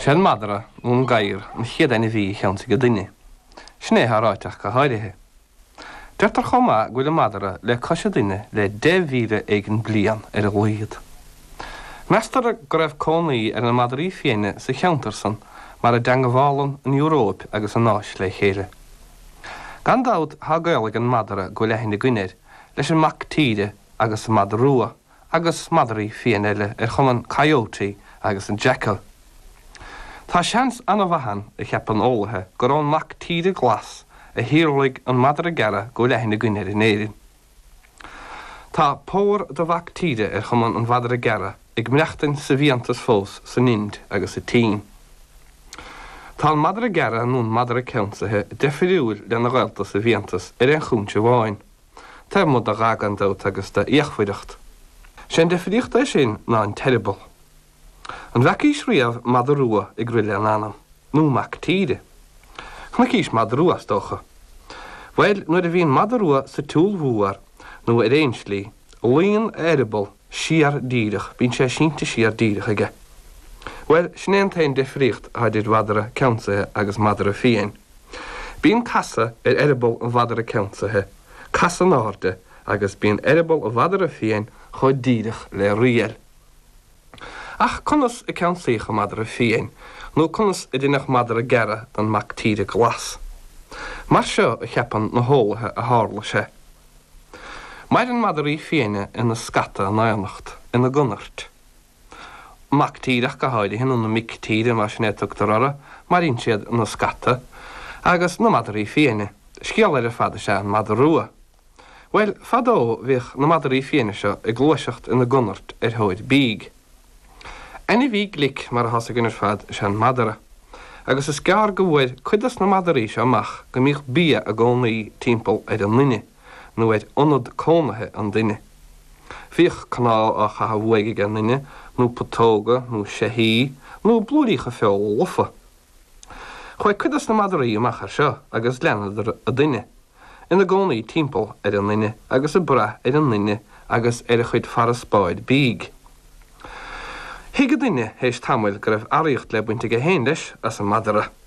Sé an madra nó an gadhar an chéad ainmhí a cheansaigh an duine. Sin é atá ráite ach go háirithe. Deirtear chomh maith go bhfuil an madra le cois an duine le deich mhíle éigin blian ar a laghad. Meastar go raibh cónaí ar na madraí fiaine sa cheantar san mar a dteangabhálann an Euróip agus an Áis le chéile. Gan dabht tá gaol ag an madra go bhfuil aithne againn air leis an mac tíre agus an madadh rua. agus madraí fiaine eile ar chuma an Coyote agus an Jackal. Tá seans an-mhaith ann, a cheapann eolaithe, gur ón mac tíre glas a shíolraigh an madra gearra go bhfuil aithne againn air in Éirinn. Tá pór de mhac tíre ar chuma an mhadra gearra ag maireachtaint sa bhfiántas fós san Ind agus sa tSín. Tá an madra gearra nó an madra ceansaithe deifiriúil lena ghaolta sa bhfiántas ar aon chúinse amháin. Taobh amuigh de dhath gan dabht agus de fhíochmhaireacht, sé an difríocht é sin ná an t-eireaball. An bhfeacaís riamh madadh rua ag rith lena anam? Nó mac tíre? Chonaicís madadh rua is dócha. Bhuel, nuair a bhíonn madadh rua sa tsiúl mhór, nó ar aon tslí, luíonn a eireaball siar díreach, bíonn sé sínte siar díreach aige. Bhuel, sin é an t-aon difríocht atá idir mhadra ceansaithe agus madra fiáin. Bíonn casadh ar eireaball an mhadra ceansaithe, casadh in airde, agus bíonn eireaball an mhadra fiain chomh díreach le riail. Ach conas a ceansaíodh an madra fiain, nó conas a deineadh madra gearra den mac tíre glas? Mar seo a cheapann na heolaithe a tharla sé. Maireann madraí fiaine ina scata in aonacht, ina gconairt. Mac tíre ach go háirithe, nó na mic tíre, más in é a tugtar orthu, maireann siad ina scata, agus na madraí fiaine. Scéal eile ar fad is ea an madadh rua. Bhuel, fadó bhíodh na madraí fiaine seo ag gluaiseacht ina gconairt ar thóir bídh. Ainmhí glic, mar atá a fhios againn ar fad, is ea an madra, agus is gearr go bhfuair cuid dos na madraí seo amach go mbíodh bia i gcónaí timpeall ar an nduine. nó ar ionad cónaithe an duine. Bhíodh cnámh á chaitheamh uaidh ag an duine, nó putóga, nó seithí, nó blúiríocha feola lofa. Chuaigh cuid dos na madraí amach ar seo agus leanadar an duine, ina gcónaí timpeall ar an nduine agus ag brath ar an nduine agus ar a chuid farasbairr bídh. Thuig an duine théis tamaill go raibh earraíocht le baint aige féin, leis, as an madra.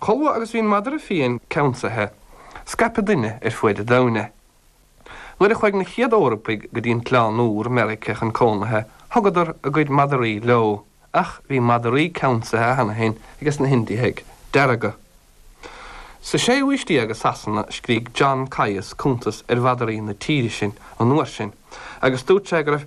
Chomh maith agus bhí an madra fiain ceansaithe. Scaip an duine ar fuaid an domhain. Nuair a chuaigh na chéad Eorpaigh go dtí an tOileán Úr, Meiriceá, chun cónaithe, thugadar a gcuid madraí leo, ach bhí madraí ceansaithe cheana féin ages na hIndiaigh Dearga. Sa séú haois déag i Sasana, scrígh John Caius cuntas ar mhadraí na tíre sin an uair sin, agus dúirt sé go raibh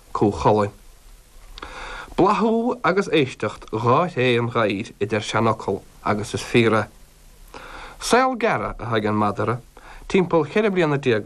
Cú Chulainn. Bláthú agus éisteacht dhá thréith an ghadhair a deir an seanfhocal agus is fíor é. Saol gearra atá ag an madara timpeall ceithre bliana déag